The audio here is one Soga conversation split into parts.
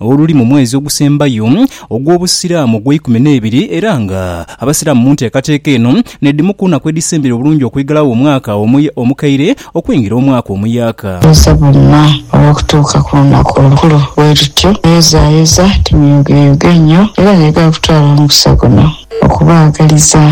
oluli mu mwezi ogusembayo ogw'Obusiraamu ogw'eikumi n'ebiri era nga Abasiraamu mu nteekateeka eno n'edhimu ku naku edhisembera obulungi okwighalagho omwaka omukaire okwingira omwaka omuyaaka. Bweza bwonna olw'okutuuka ku lunaku olukulu bwe lutyo. Neyozayoza ti muyogeyoge nnyo era n'egha kutwala mukisa guno. Okubaagaliza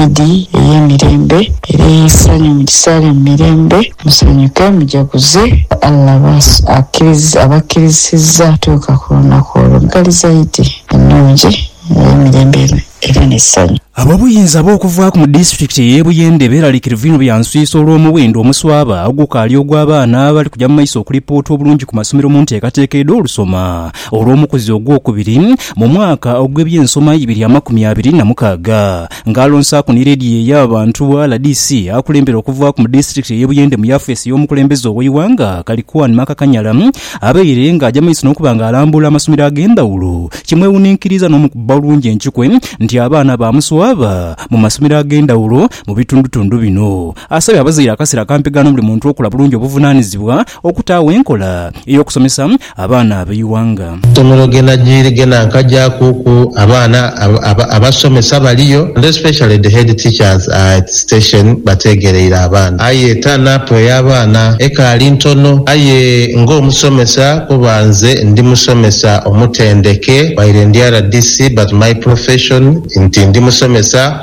Idi ey'emirembe era ey'eisanyu, mugisaale mu mirembe, musanyuke mujaguze. Allah abakkirizisizza okutuuka ku lunaku olwo mughaliza Idi ennungi ey'emirembe era n'essanyu. Ab'obuyinza ab'okuvaaku mu disitulikiti ey'e Buyende beeralikirivu inho bya nswisa olw'omuwendo omuswaba ogukaali ogw'abaana abali kuja mu maiso okulipoota obulungi ku masomero mu nteekateeka edh'olusoma Olw'omukuzi ogwokubiri, mu mwaka ogw'eby'ensoma ibiri amakumi abiri na mukaaga, ng'alonsaaku ni leediyo ey'abantu, rdc, akulembere okuvaaku mu disiturikiti ey'e Buyende mu yafeesi y'omukulembeze ow'eighanga Kaliquan Makakanyala abaire ng'aja maiso n'okuba ng'alambula amasomero ag'endhawulo kimwewuninkiriza n'omukuba bulungi enkikwe nti abaana baamuswaba mu masomero ag'endhawulo mu bitundutundu bino. Asabye abazaire akaseera akampegano buli muntu okola bulungi obuvunaanizibwa Okutaagho enkola ey'okusomesa abaana ab'eighanga. Somero gena jiiri gena nkajakuku abaana abasomesa baliyo and especially the head teachers are at station bategereire abaana aye turn up ey'abaana ekaali ntono aye nga omusomesa kuba nze ndi musomesa omutendeke while ndi rdc but my profession nti ndi musomesa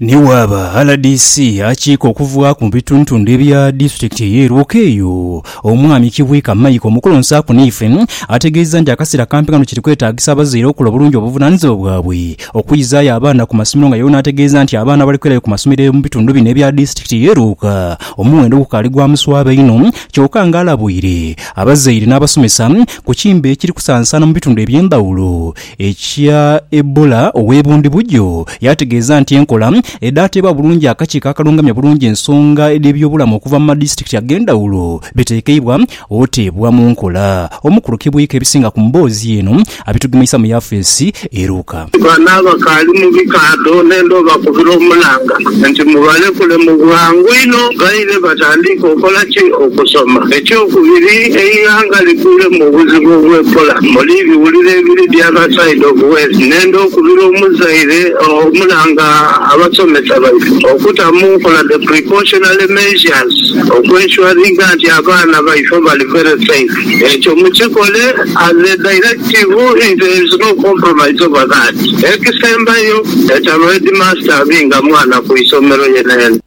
Ni bw'aba rdc akiika okuvaaku mu bitundutundu ebya disitulikiti eye Lwoke eyo, Omwami Kibwika Michael Mukulu Nsaaku Niife ategeezezza nti akaseera kampi kano kiri kwetaagisa abazaire okola obulungi obuvunanizibwa bwabwe okwizaayo abaana ku masomero nga yewe n'ategeeza nti abaana abali kwirayo ku masomero mu bitundu bino ebya disitulikiti eye Lwoka omuwendo gukaali gwa muswaba inho kyoka nga alabuire abazaire n'abasomesa ku kimbe ekiri kusaansaana mu bitundu eby'endhawulo Ekya Ebola ow'e Bundibugyo yaategeeza nti enkola edhaateebwa bulungi akakiiko akalungamya obulungi ensonga edh'ebyobulamu okuva mu madisitikiti ag'endhawulo biteekeibwa oteebwa mu nkola. Omukulu Kibwika ebisinga ku mboozi eno abitugemeisa mu yafeesi eruuka. Bano abakaali mu bikaadho n'endhoba kubira omulanga nti mubalekule mu bwangu inho. Abazaire batandiike okola ki? Okusoma. Ekyokubiri, eighanga likuule mu buzibu obwekola muli ebiwuliro ebiri the other side of west. Nenda okubira omuzaire omulanga abasomesa baife okuta mu nkola the precautionary measures oku ensuringa nti abaana baife bali very safe. Ekyo mukikole as a directive if there is no compromise over that. Ekisembayo, etalo headmaster abinga mwana ku isomero yenayena.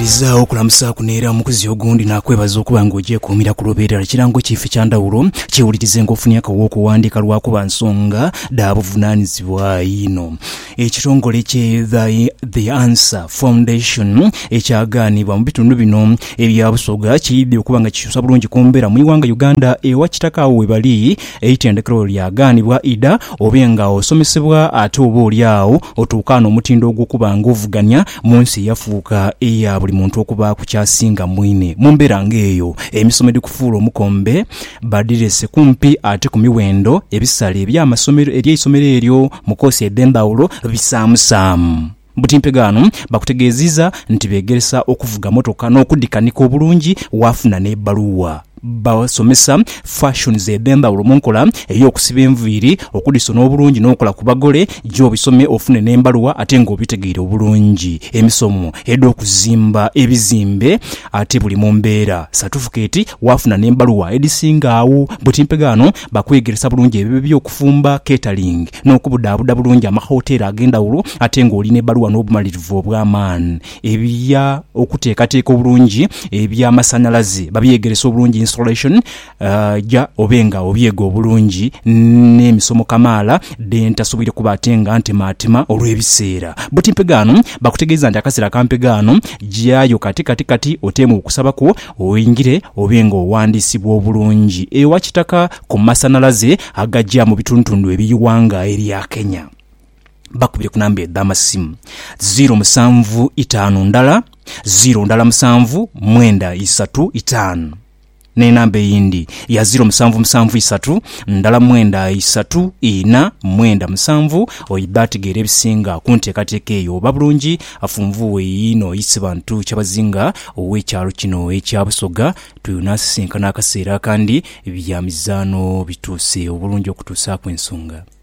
Bw'omalirizaagho okulamusaaku n'era omukozi ogundi naakwebaza okuba nga ogyekuumira ku lobo erala, kirango ki fi kya ndhawulo? Kyewulirize nga ofunye akagho okuwandiika lwa kuba nsonga dha buvunaanyizibwa inho. Ekitongole kye The Answer Foundation ekyagaanibwa mu bitundu bino ebya Busoga kiyidde okuba nga kikyusa bulungi ku mbeera mu ighanga Uganda ewa kitaka agho webali eitendekero lyagaanibwa idha obe nga osomesebwa ate oba oli agho otuukaane omutindo ogw'okuba nga ovuganya Mu nsi eyafuuka eya buli muntu okubaaku ky'asinga mwine. Mu mbeera ng'eyo, emisomo edhikufuula omukombe badhirese kumpi ate ku miwendo. Ebisale eby'amasomero eby'eisomero eryo mu koosi edh'endhawulo bisaamusaamu. Buti mpegho ghano bakutegeeziiza nti beegeresa okuvuga mmotoka n'okudhikanika obulungi waafuna n'ebbaluwa. Basomesa fashions edh'endhaghulo mu nkola ey'okusiba enviiri, okudhisona obulungi n'okukola ku bagole. Gya obisome ofune n'embaluwa ate nga obitegeire obulungi. Emisomo edh'okuzimba ebizimbe ate buli mu mbeera, satufukeeti waafuna n'embaluwa edhisinga agho. Buti mpegaano bakwegeresa bulungi ebyo eby'okufumba, catering, n'okubudhaabuda bulungi amahoteeri ag'endhaghulo ate ng'oli n'ebbaluwa n'obumalirivu obw'amaani. Ebya okuteekateeka obulungi eby'amasanhalaze babyegerese obulungi, installation, ja obe nga obyega obulungi n'emisomo kamaala dhe ntasoboire kuba ate nga ntemaatima olw'ebiseera. But mpegaano bakutegeeza nti akaseera ka mpegaano gyayo kati kati kati oteemu okusaba kwo oingire obe nga owandiisibwa obulungi ewa Kitaka ku masanhalaze agaja mu bitundutundu eby'eighanga erya Kenya. bakubire ku namba edh'amasimu ziiro musanvu itaanu ndala ziiro ndala musanvu mwenda isatu itaanu n'enamba eyindi ya ziiro musanvu musanvu isatu ndala mwenda isatu ina mwenda musanvu. Oidha ategeera ebisinga ku nteekateeka eyo oba bulungi afunvuwe yiino Isibantu Kyabazinga ow'ekyalo kino ekya Busoga tweyonaasisinkana akaseera akandi bya mizaano bituuse obulungi okutuusaaku ensonga.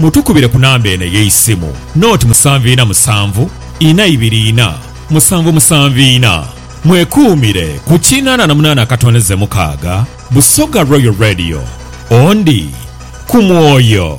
Mutukubire ku namba eno ey'eisimu, noti musanvu ina musanvu ina ibiri ina musanvu musanvu ina. Mwekuumire ku kinaana na munaana akatondeze mukaaga. Busoga Royal Radio, Ondi ku mwoyo.